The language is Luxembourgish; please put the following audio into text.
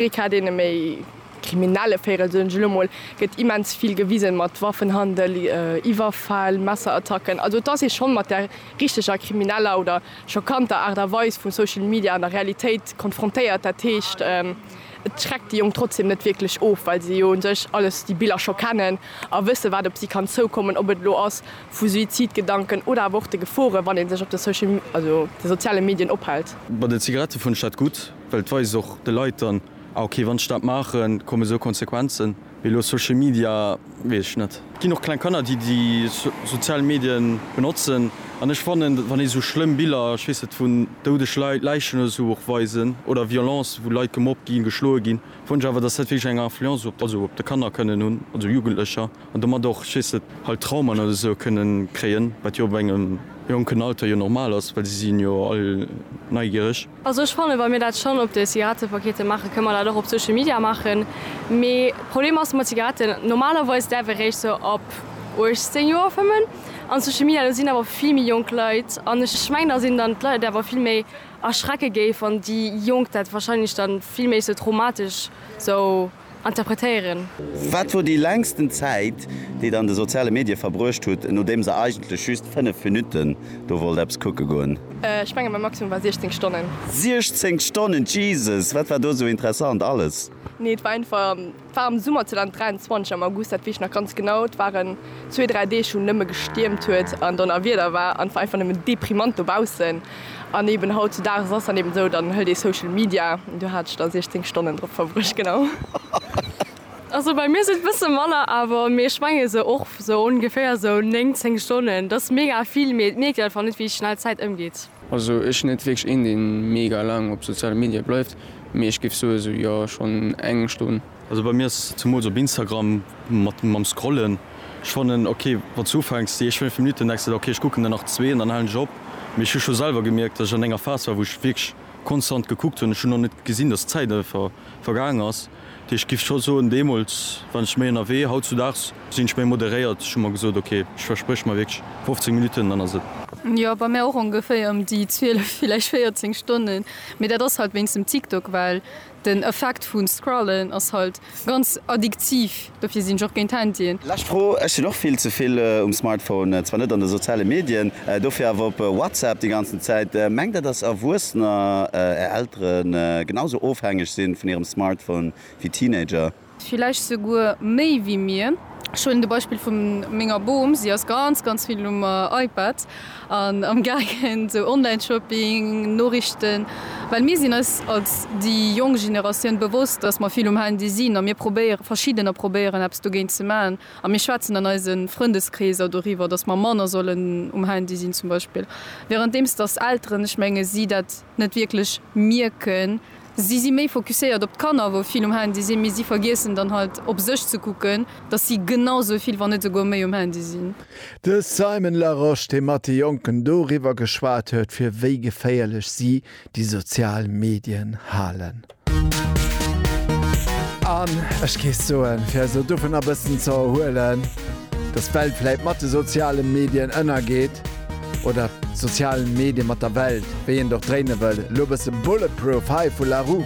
Ee Cas, deen e méi kriminelle Véirel, soen ech elo mol, gëtt immens vill gewisen, mat Waffenhandel, Iwwerfäll, Messerattacken. Also et ass ee schonn mat där richteger krimineller oder schockanter Aart a Weis vu Social Media an der Realitéit konfrontéiert. Dat heescht, et schreckt déi Jonk trotzdem net wierklech of, well se jo u sech alles, déi Biller scho kennen a wëssen, wat op si kann zoukommen, ob et elo ass vu Suizidgedanken oder awer och de Gefore wann ee sech op de Social, also de soziale Medien ophält. Bei de Zigarettë fund ech dat gutt. Well et weist och de Leit dann, ah ok, wann ech dat maachen, kommen esou Konsequenzen. Mee elo Social Media, weess ech net. Et ginn och kleng Kanner, déi déi sozial Medien benotzen. An ech fannen, wann ee sou schlëmm Biller, ech weess net, vun doudeg Leit, Läichen oder sou och weisen, oder Violence, wou Leit gemobbt ginn, geschloe ginn, fannen ech awer, dass dat wierklech eng Influence op, also op de Kanner kënnen hunn, also Jugendlecher, an domat och, ech weess net, halt Traumaen oder sou kënnen kréien, wat jo op engem jonken Alter jo normal ass, well si sinn jo all neigiereg. Also ech fannen, wa mir dat schonn op de Zigarettepakete maachen, kënne mer dat och op Social Media maachen. Mee Problem ass mat Zigaretten, normalerweis däerf ee réischt sou ab 18 Joer fëmmen. An Social Media, do sinn awer vill méi jonk Leit. An ech mengen, datt een dann d'Leit awer vill méi erschrecke géif, wann déi Jonk dat wahrscheinlech dann vill méi sou traumatesch sou. interpretéieren. Wat wor déi längsten Zäit, déi der an de soziale Medie verbruecht hutt, nodeems der eigentlech just 5 Minutten do wollt eppes kucke goen? Ech mengen mäi Maximum war 16 Stonnen. 16 Stonnen, Jesus! Wat war do esou interessant alles? Nee, et war einfach, et war am Summer 2023 am August, dat weess ech nach ganz genau. Et waren zwee, dräi Deeg wou nëmme gestiermt huet an Donnerwieder war an et war einfach nëmmen deprimant dobaussen. An eben hautzudages ass dann eben esou, dann hëlt ee Social Media, an do hat ech da 16 Stonnen drop verbruecht, genau. Also bei mir sinn et bësse manner awer, mee ech menge sou och sou ongeféier sou 9, 10 Stonnen. Dat ass mega vill, mee et mierkt een einfach net, wéi schnell d'Zäit ëmgeet. Also ech sinn net wierklech een, dee mega laang op soziale Medie bleift, mee ech géif soe sou, jo, schonn eng Stonn. Also bei mir ass zemools op Instagram mat mam scrollen, ech fannen ok wanns du ufänks déi éischt 5 Minuten denks de der ok ech kucken der nach zwee an dann halen ech op, mee ech hu scho selwer gemierkt dass ech an enger Phase war wou ech wierklech konstant gekuckt hunn, ech hunn och net gesinn dass d'Zäit einfach vergaangen ass, dat heescht ech giff scho soen deemools war ech méi ënnerwee, hautzudags sinn ech méi moderéiert, ech hu mer gesot ok ech verspréch mer wierklech 15 Minuten dann ass et. Jo bei mär och ongeféier ëm déi 12 villäicht 14 Stonnen, mee dat ass halt wéinst dem TikTok well. Den Effekt vun Scrollen ass halt ganz addiktiv, dofir sinn ech och géint Handyen. Lescht Fro, Ech sinn och vill ze vill um Smartphone, zwar net an de soziale Medien, dofir awer op WhatsApp déi ganzen Zäit. Mengt der dass Erwuessener, är Elteren, genau sou ofhängeg sinn vun hirem Smartphone wéi Teenager? Villäicht souguer méi wéi mir. Ech huelen de Beispill vu menger Bom. Si ass ganz, ganz vill um iPad an amgaangen, sou Online-Shopping, Noriichten. Well mir sinn eis als déi jonk Generatioun bewosst, dass mer vill um Handy sinn a mir probéieren, verschiddener probéieren eppes dogéint ze maachen. A mir schwätzen an eise Frëndeskreeser doriwwer, dass mer manner sollen um Handy sinn zum Beispill. Währenddeems dass Elteren, ech menge si dat net wierklech mierken. Si si méi focuséiert op d'Kanner, wou vill um Handy sinn, mee si vergiessen dann halt op sech ze kucken, dass si genau sou vill, wann net souguer méi um Handy sinn. De Simon Larosche, dee mat de Jonken doriwwer geschwat huet, fir wéi geféierlech si déi sozial Medien halen. An ech géif soen, fir eis elo dovunner e bëssen ze erhuelen, dass d'Welt vläit mat de soziale Medien ënnergeet, Oder d'sozialen Medien mat der Welt, wéi een et och dréine wëll. Elo bësse Bulletproof hei vu Larue.